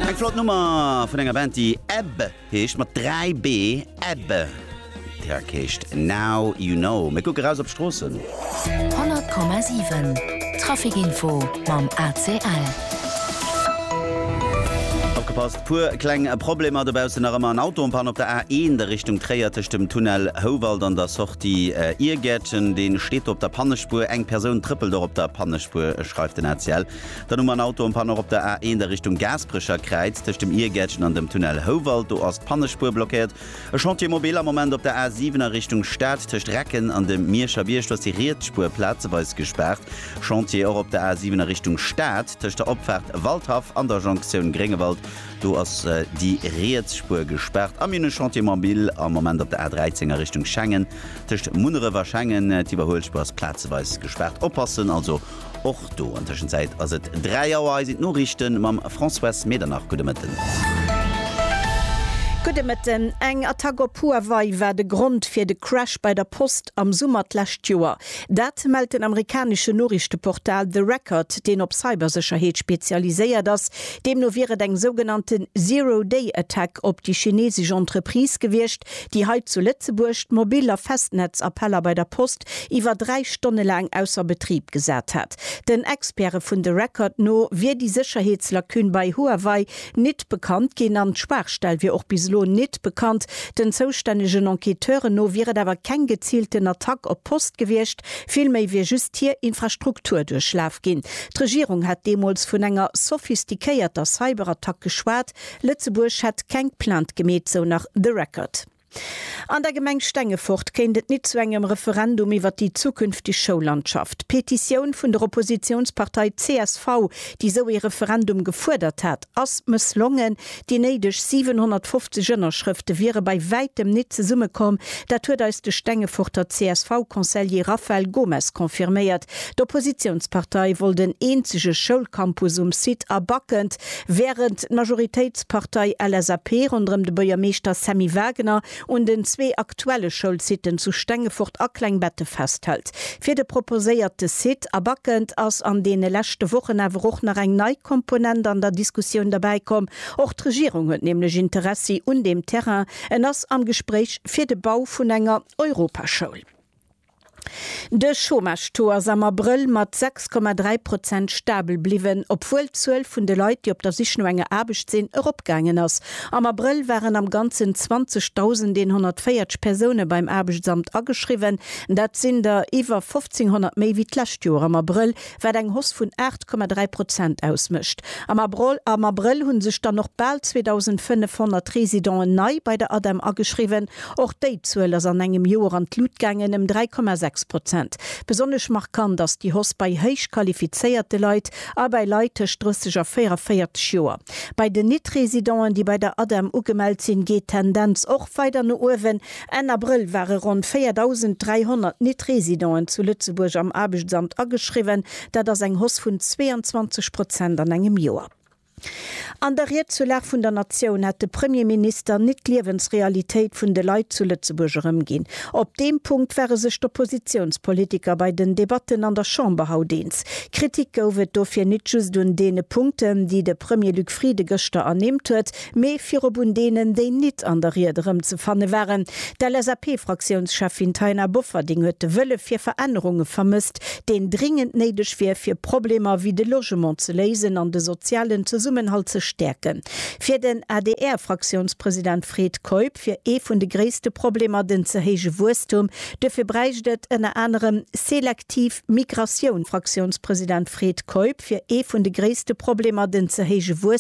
Eng flott Nummer vun enger Band, déi Ebb heescht, mat dräi Bee, Ebb. D'Track heescht Now You Know. Mir kucke raus op d'Stroossen. 100,7 Traficinfo mam ACL. Opgepasst, puer kleng Problemer dobaussen, nach ëmmer en Auto en Panne op der A1 a Richtung Tréier tëscht dem Tunnel Houwald an der Sortie Irgärtchen. Dee steet do op der Pannespuer, eng Persoun trëppelt och op der Pannespuer, schreift den ACL. Dann hu mer en Auto en panne och op der A1 a Richtung Gaasperecher Kräiz, tëscht dem Irgäertchen an dem Tunnel Houwald. Do ass d'Pannespuer blockéiert. E Chantier mobile am Moment op der A7 a Richtung Stad, tëscht Recken an dem Mierscher Bierg. Do ass déi riets Spuer plazeweis gespaart. Chantier och op der A7 a Richtung Stad, tëscht der Opfaart Waldhaff an der Jonktioun Gréngewald. Do ass déi riets Spuer gespaart. A mir hunn e Chantier mobile am Moment op der A13 a Richtung Schengen, tëscht Munneref a Schengen. D'Iwwerhuelspuer ass plazeweis gespaart. Oppassen also! Och do an Tëschenzäit ass et 3 Auer. Hei sinn d'Noriichte mam Françoise Medernach. Gudde Mëtten. Gudde Mëtten. Eng Attack op Huawei war de Grond fir de Crash bei der Post am Summer d'lescht Joer. Dat mellt den amerikaneschen Noriichteportal The Record, deen op Cybersécherheet spezialiséiert ass. Deemno wier et eng sougenannten Zero-Day-Attack op déi chinesesch Entreprise gewiescht, Déi hei zu Lëtzebuerg d'Mobil a Festnetzappeller bei der Post iwwer 3 Stonne laang ausser Betrib gesat hat. Den Experte vun The Record no wier déi Sécherheetslacune bei Huawei nit bekannt ginn an d'Schwaachstell wier och bis elo nit bekannt. Den zoustännegen Enquêteuren no wier et awer keng geziilten Attack op d'Post gewiescht, villméi wier just hir Infrastruktur duerchlaf ginn. D'Regierung hat deemools vun enger sophistiquéierter Cyberattack geschwat. Lëtzebuerg hätt keng Plainte gemeet, sou nach The Record. An der Gemeng Stengefort kéint et nit zu engem Referendum iwwer déi zukünfteg Schoullandschaft. D'Petitioun vun der Oppositiounspartei csv, déi esou ee Referendum gefuerdert hat, ass mësslongen. Déi néideg 750 Ënnerschrëfte wiere bei wäitem nit zesummekomm. Dat huet eis de Stengeforter CSV-Conseiller Raphael Gomes confirméiert, D'Oppositiounspartei wollt en eenzege Schoulcampus um Site a Backend, wärend d'Majoritéitspartei LSAP ronderëm de Buergermeeschter Sammy Wagener un den zwee aktuelle Schoulsiten zu Stengefort a Klengbette festhält. Fir de proposéierte Site a Backend ass an deene leschte Wochen awer och nach eng nei Komponent an der Diskussioun derbäi komm. Och d'Regierung huet nämlech Interessi un deem Terrain, en ass am Gespréich fir de Bau vun enger Europaschoul. De Chômage-Taux ass am Abrëll mat 6,3 Prozent stabel bliwwen, obwuel d'Zuel vun de Leit, déi op der Sich no enger Aarbecht sinn, eropgaangen ass. Am Abrëll waren am Ganzen 20.140 Persoune beim Aarbechtsamt ageschriwwen, dat sinn der iwwer 1.500 méi wéi d'lescht Joer am Abrëll, wat eng Hausse vun 8,3 Prozent ausmécht. Am Abrëll hu sech dann och bal 2.500 Residenten nei bei der ADEM ageschriwwen. Och déi Zuel ass an engem Joer an d'Lut gaangen, ëm 3,6 Prozent. Besonnesch markant ass déi Hausse bei héich qualifizéierte Leit a bei Leit tëscht 30 a 44 Joer. Bei den Nit-Residenten, déi bei der ADEM ugemellt sinn, geet d'Tendenz och weider no uewen. Enn Abrëll ware ronn 4.300 Nit-Residenten zu Lëtzebuerg am Aarbechtsamt ageschriwwen, dat ass eng Hoss vun 22 Prozent an engem Joer. An der Ried zur Lag vun der Natioun hat de Premierminister Nit-Liewensrealitéit vun de Leit zu Lëtzebuerg erëmginn. Op deem Punkt ware sech d'Oppositiounspolitiker bei den Debatten an der Chamber haut eens. Kritik gouf et dofir nit just un deene Punkten, déi de Premier Luc Frieden gëschter ernimmt huet, Mee virop un deenen, déi nit an der Ried erëmzefanne waren. D'LSAP-Fraktiounscheffin Taina Bofferding huet de Wëlle fir Verännerunge vermësst, deen dringend néideg wier, fir Problemer wéi de Logement ze léisen an de sozialen Zesummenhalt ze stäerken. Fir den ADR-Fraktiounspresident Fred Keup wier ee vun de gréisste Problemer den ze héije Wuesstum. Duerfir bräicht et ënner anerem selektiv Migratioun. Fraktiounspresident Fred Keup wier ee vun de gréisste Problemer den ze héije.